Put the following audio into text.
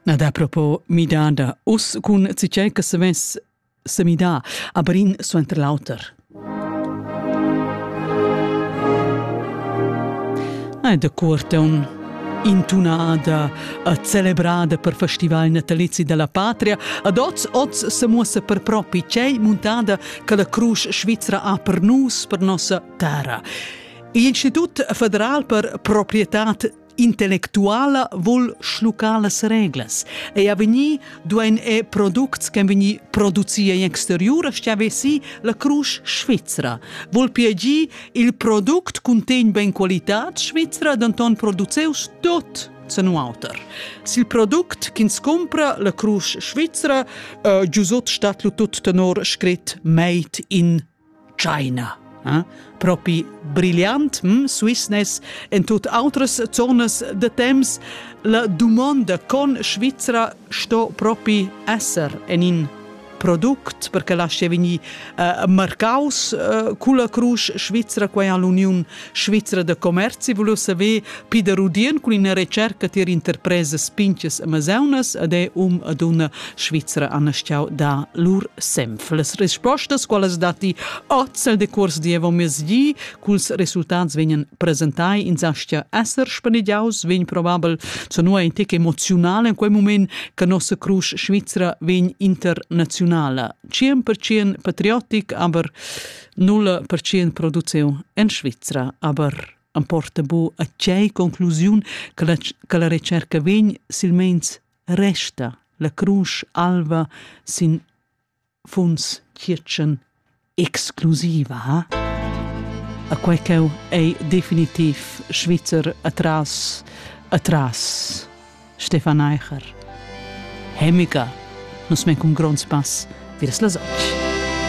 Na da propo midà da us cun citgè che se vess semidà, aber in suenter l'auter. È da Curteun intunada e celebrada per festival natalizi della patria, ad oz oz se muossa per propi c'è montada che la cruce svizra ha per nus, per nossa terra. L'Institut federal per proprietà intellectuala vol schluccar las reglas. Ei ha vegni duein e products che vegni produci in exterior, stia vesi la crusch svizra. Vol piagi il product contegn ben qualitad svizra, denton produceus tot se nuauter. Sil produkt ch'ins compra la crusch svizra, uh, giusot stat lu tut tenor scrit made in China. Eh? Propi brillant, hm, Swissness, en tut outras zonas de temps, la dumonda con Svizzera sto propi esser en in product perché lascia vegnir uh, marcaus uh, culla crusch Svizzera quai all'Uniun Svizra da commerzi vul saver Pieder Rudien cun ina retscherca tier interpresas pintgas amazeunas ed è um e dunna svizra han stiau dar lur senf. Las rispostas, qualas datti oz el decurs dievommezgi, culs resultats vegnan presentai in sastia esser spanegiaus, vegn probabel zanua in tec emozional en quei moment che nossa crusch svizra vegn internazionala. 100% patriotic, aber 0% produziun en Svizra, aber am porta bu a tgei conclusiun che la, che la recerca vegn silmeins resta la crunch alva sin funds kirchen exclusiva. A quei cheu ei definitiv Schweizer atras atras Stefan Eicher. Hemica, nus me cun gronds pass, virs las otg.